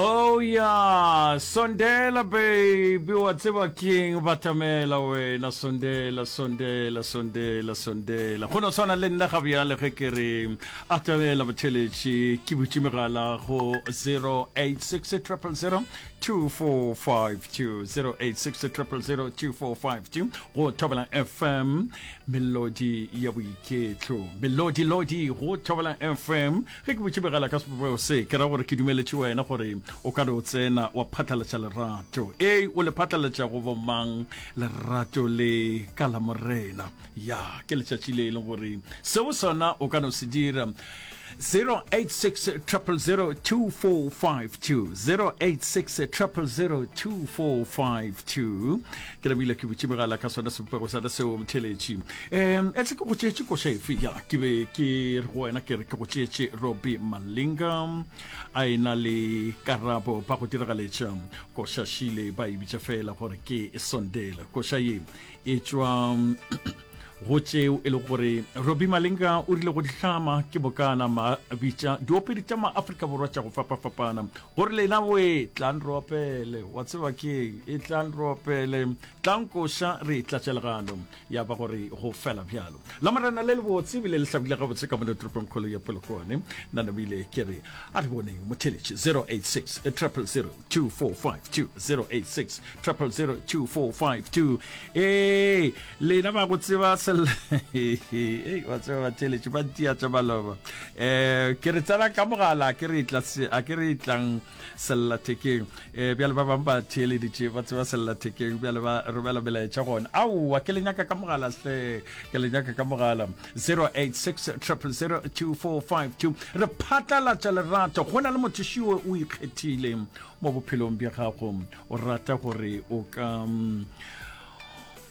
Oh yeah, Sondela baby, wa tseba king batamela wena Sondela, Sondela, Sondela, Sondela. Go no tshwana le nna ga bjale ge ke re atamela botheletši ke butše megala go 086 000 2452 086 000 2452 go thobela fm melodi ya boiketlo melodi lodi go thobela fm Ge ke botšibegela ka sebopego se, ke ra gore ke dumeletše wena gore o ka re o tsena wa phatlalatša lerato. Ee, o le phatlalatša go bomang lerato le ka la Morena? Ya, ke letšatši le e leng gore seo sona o ka no se dira. 0860002452, 0860002452, ke lebile ke butše megala ka sona sebopego sona seo motheletši um etle ke go tšeetše koša efe ya ke be ke re go wena ke re ke go tšeetše roby malinga a e na le karabo ba go diragaletša koša šile ba e bitša fela gore ke e sondela koša ye e tšwa go tšeo e le gore roby malinga o rile go dihlama ke bokana ma bitša diopedi tša maaforika borwa tša go fapafapana Gore lena boe tlang re opele, wa tseba keng, e tlang re opele, tlang koša re tlatšelegano, ya ba gore go fela bjalo. La Morena le lebotse ebile le hlabile gabotse ka mone toropongkgolo ya Polokwane. Nna namile ke re a re boneng motheletši 086 000 2452 086 triple zero two four five two ee lena ba go tseba sel ba tseba ba theletše ba ntia tša maloba um eh, ke re tsena ka mogala a ke re itlang sellathekeng um bjale ba bangwe ba theeleditše ba tseba sellathekeng bjale ba romela melaetša gona aowa ke lenyaka ka mogala hle ke lenyaka ka mogala zero eight six triple zero two four five two re phatlalatša lerato go na le motho šiwe o ikgethileng mo bophelong bja gago o rata gore o ka mm,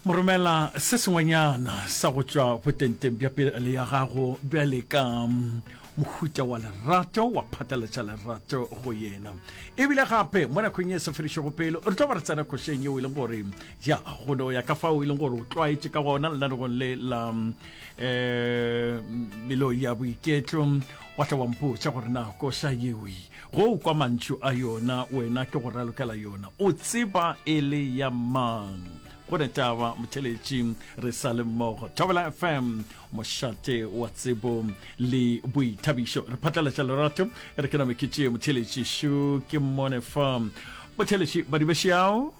mo romela se sengwenyana sa go tšwa botenteng bja pele ya gago bjale ka mm, mohuta wa lerato wa phatalatša lerato go yena ebile gape mo nakong e sa fedišego pele re tlo ba re tsena košeng yeo e leng gore ya gone o ya ka fao e leng gore o tlwaetše ka gona lenanegong le la um melo ya boiketlo wa tla wampotša gore na koša yeoe Go kwa mantšu a yona, wena ke go ralokela yona. O tseba e le ya mang. Go ne taba motheletši re sa le mmogo. Thobela FM, mošate wa tsebo le boithabišo. Re phatlalatša lerato, re ke name ke tšee motheletši šo ke mmone fa. Motheletši, badibešeao.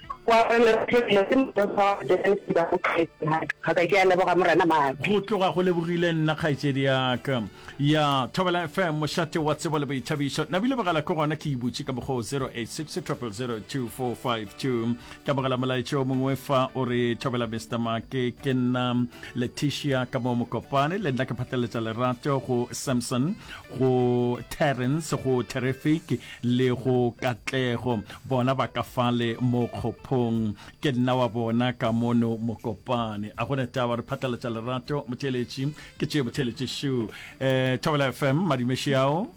Go aparela go hlwekile ke motheo sa wa go tsena lesiba go kgaetšedi ga ka. Ga ka ke a leboga Morena Maaka. Go tloga go lebogile nna kgaetšedi ya ka. Ya Thobela FM, mošate wa tsebo le boithabišo. Na bilebogela ke gona ke ibutše ka mokgwa o 0860002452. Ke amogela molaetša o mongwe fa o re Thobela Mister Maake ke nna Letitia ka mo Mokopane le nna ke phatlaletša lerato go Samson go Terence go Terrific le go katlego, bona ba ka fale mo kgophong, ke nna wa bona ka mono Mokopane. A gona taba re phatlalatša lerato, motheeletši ke tšee motheeletši šo. Eh, Thobela FM, madimeši ao.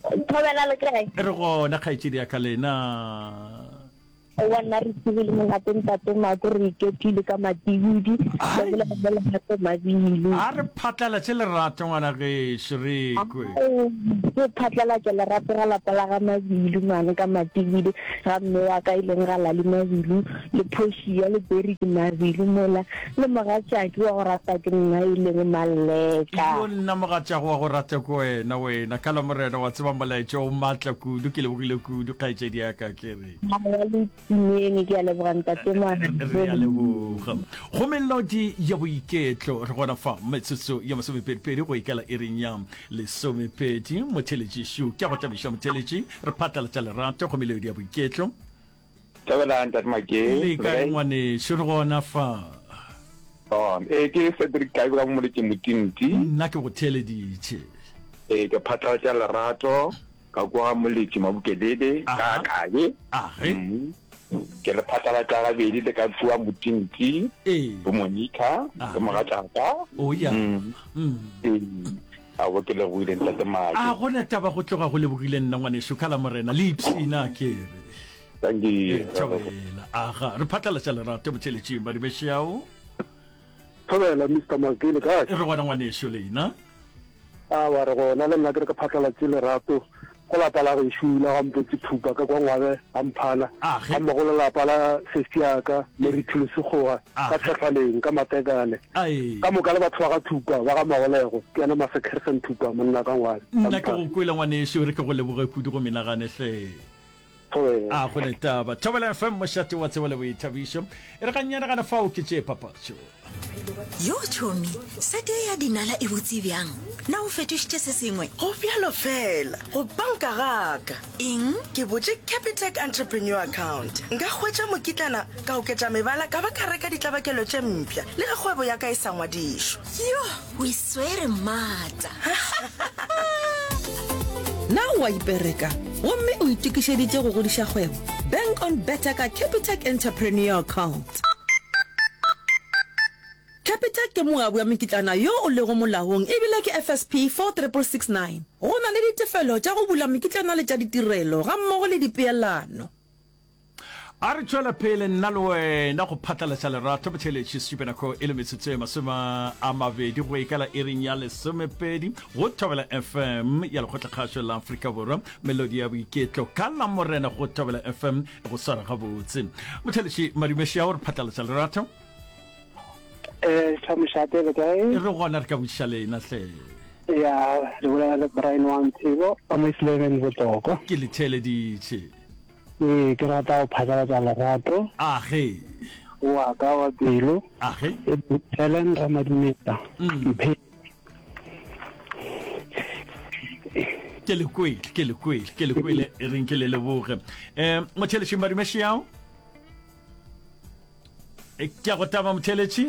Thobela le kae? Re gona kgaetšedi ya ka lena. Aowa, nna re tsebe le molato ntate Mako, re iketlile ka matibidi, re bolela le lerato Mabele. A re phatlalatše lerato ngwana gešo re kwe. Ao, re phatlalatša lerato ga lapa la ga Mabele mane ka matibidi, ga mme wa ka e leng ga Lali Mabele, le Portia le Derrick Mabele mola, le mogatšaki wa go ratwa ke nna e leng Malleka. Yo nna mogatšago wa go ratwa ke wena, wena Kala Morena, wa tseba molaetša o matla kudu, ke lebogile kudu kgaetšedi ya ka, ke re. go melodi ya boiketlo re gona fa metsotso ya masomepedipedi go ikela e reng ya lesomepedi motheletši šu ke go tlabiša motheletši re phatlalatša lerato go melodi ya boiketlo le kae ngwanešu re gona fa ee ke cedric kae ka momoletše motinti nna ke go theleditše ee ke phatlalatša lerato Ka kwa Moletši Mabukedede ka Kabe, mmu, ke re phatlalatša gabedi le ka kua Motintsi, bo Monica le mogatšaka. A bo ke lebogile ntate Maki. A gona taba go tloga go lebogile nna ngwaneso ka la morena le ipshina kere. Thank you. Thobela. Aga re phatlalatša lerato botheletšing ba dibešeao. Thobela, Mister Mcgee, le kae? Re gona ngwaneso, leina? Awa, re gona, le nna ke re ke phatlalatse lerato go lapa la gešo la ga Mpotse Thupa ka kwa Ngwabe ga Mphana, ga mmogo le lapa la sesi ya ka Mary Thulu Sekgowa ka Tshehlaleng ka Matekane. Ka moka le batho ba ga Thupa ba ga Magolego, ke yena Mase Kirsten Thupa, monna ka Ngwabe. Nna ke go kwele ngwaneso, e re ke go leboge kudu go menagane hle. a go le taba thobela fm mošate wa tsebo le boithabišo e re ganyanegana fao ke tšee papatšo yo tšhomi sete ye ya dinala e botse bjang na o fetošitše se sengwe go bjalo fela go banka gaka eng ke botše capitec entrepreneur account nka hwetša mokitlana ka oketša mebala ka ba ka reka ditlabakelo tše mpša le ge kgwebo ya ka e sa ngwadišo yo o iswere maata na o a ipereka gomme o itokišeditše go godiša kgwebo bank on better ka capitac entrepreneur account capitac ke moabi wa mekitlana yo o lego molaong ebile ke fsp 46669 go na le ditefelo tša go bula mekitlana le tša ditirelo ga mmogo le dipeelano A re tšwela pele nna le wena go phatlalatša lerato botšheletši Supenako e le metsotso e masome a mabedi go ikala iring ya lesomepedi go Thobela FM ya lekgotlakgašo la Afrika Borwa melodi ya boiketlo ka la morena go Thobela FM e go swara gabotse motšheletši Madumeši ao re phatlalatša lerato e re gona re ka botšiša lena hle ya re bolela le brian wa ntsebo ke letheleditše Ee, ke rata go phatlalatša legato. Age. Wa ka wa pelo. Age. E Helen Ramadumeta. Mphe. ke le kwele ke le kwele ke le kwele e reng ke le leboge um mothelešeng ba dumešeao E, ke a go taba motheletši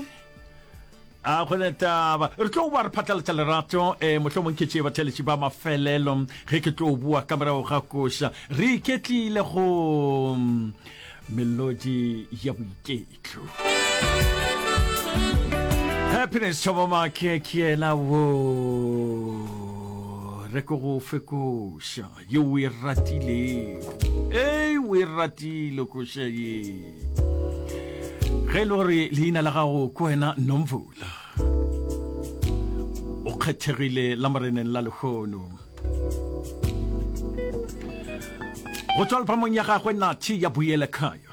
a go ne taba re tlo ba re phatlalatša lerato um eh, motlho mong khetše batheletši ba mafelelo ge ke tlo bua ka morago ga koša re iketlile go mm, melodi ya boiketlo happiness tšhobomake ke yena wo re ko go fekoša Yo o e ratilego ee o e ratile koša ye ge e le gore leina la gago ke wena nomvula o kgethegile la moreneng la lekgono go tswa lefamong ya gagwe nathi ya boele kaya